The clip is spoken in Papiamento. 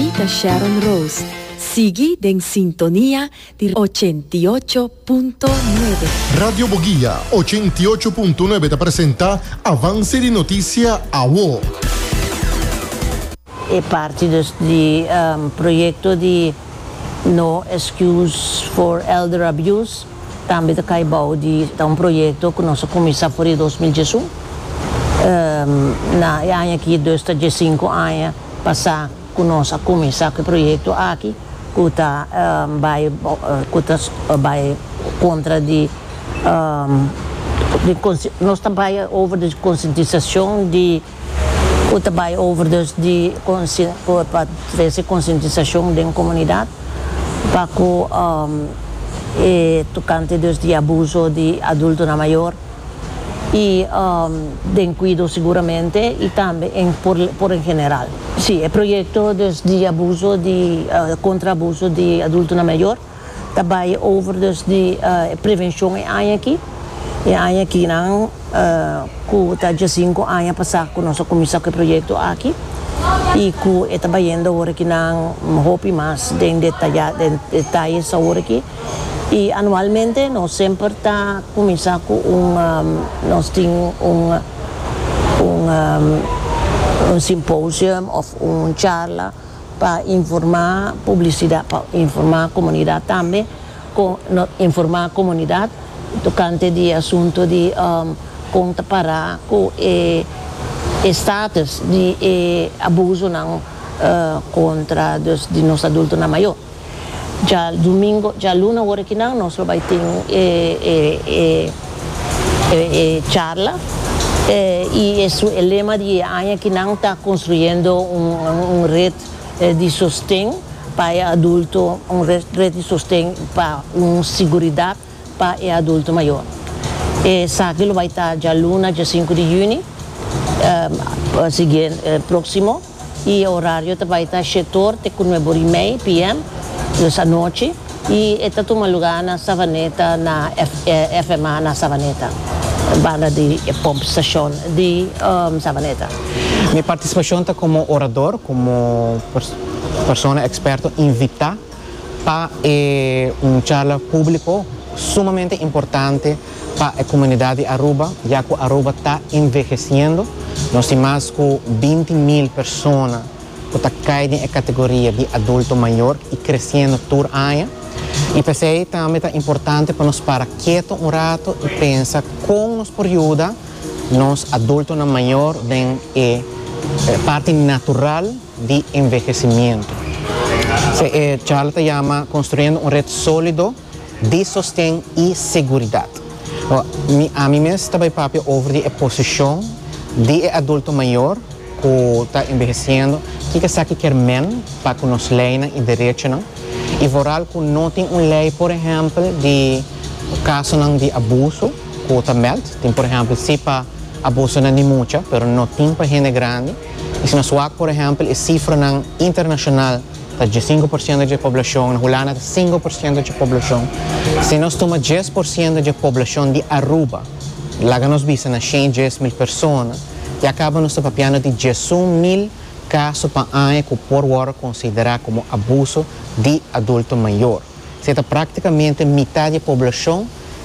I ta Sharon Rose. Sigui den sintonia di ochenta i ocho punto nuebe. Radio Boguia ochenta i ocho punto nuebe ta presenta Avance di Noticia Awo. E parti dus di proyecto di No Excuse for Elder Abuse tambe ta cay bao di ta un proyecto cu nos a cuminsa for di dos mil diesun. Na e aña aki dus ta diescinco aña. Pasa ku nos a kuminsá ku e proyekto aki ku ta bai ku ta bai kontra di di nos ta bai over di konsientisashon di ku ta bai over dus di pa trese konsientisashon den komunidat pa ku e tokante dus di abuso di adultonan mayor. y den cuido seguramente y tambe en por en general. Si, e proyecto dus di abuso di contra abuso di adultonan mayor ta bay over dus di e prevencion e aña aki, e aña aki nan cu ta diesinco aña pasa cu nos a cuminsa cu e proyecto aki y cu e ta bayendo awor aki nan hopi mas den detaye awor aki. Y anualmente nos semper ta cuminsa cu un nos tin un un un symposium of un charla pa informa publicidad pa informa comunidad tambe con nos informa comunidad tocante di asunto di con ta para cu e e status di e abusonan contra dus di nos adultonan mayor. Dja dumingo, dja luna ora ki nan nos lo bai tin e e e charla y e su e lema di e aña ki nan ta construyendo un un red di sosten pa e adulto un red di sosten pa un siguridad pa e adulto mayor. Esaki lo bai ta dja luna dja sinku di juni siguiente proximo. y e horario ta bay ta Shetor te cu Nuevo Rimey, PM, dus anochi, y e ta tuma lugar na Savaneta na FMA na Savaneta, banda di e pump station di Savaneta. Mi participacion ta como orador, como persona experto invita. Pa e un charla públiko sumamente importante pa e komunidat di Aruba, ya ku Aruba ta envehesiendo. Nos tin mas ku binti mil persona ku ta kai den e kategoria di adulto mayor i kresiendo tur aña. I p'esei tambe ta importante pa nos para keto un rato i pensa kon nos por yuda nos adultonan mayor den e parti natural. di envehesimiento. Se e charla ta yama Construyendo un red solido di sosten y seguridad. Mi, ami mes ta bay papia over di e posicion di e adulto mayor cu ta enveheciendo, kico esaki kier men pa cu nos leynan y derechonan y vooral cu no tin un ley por ehempel di casonan di abuso cu ta meld. Tin por ehempel si pa abusonan di mucha pero no tin pa hende grandi. I si nos wak por ehèmpel e sifranan internashonal, ta djesienku por siento dje poblashon, na Hulanda ta sinku por siento dje poblashon. Si nos tuma djes por siento dje poblashon di Aruba, laga nos bisa na shen djes mil persona, ya kaba nos ta papiando di djesun mil kaso pa aña ku por wòrdu konsiderá komo abuso di adulto mayor. Sey ta praktikamente mitá di e poblashon.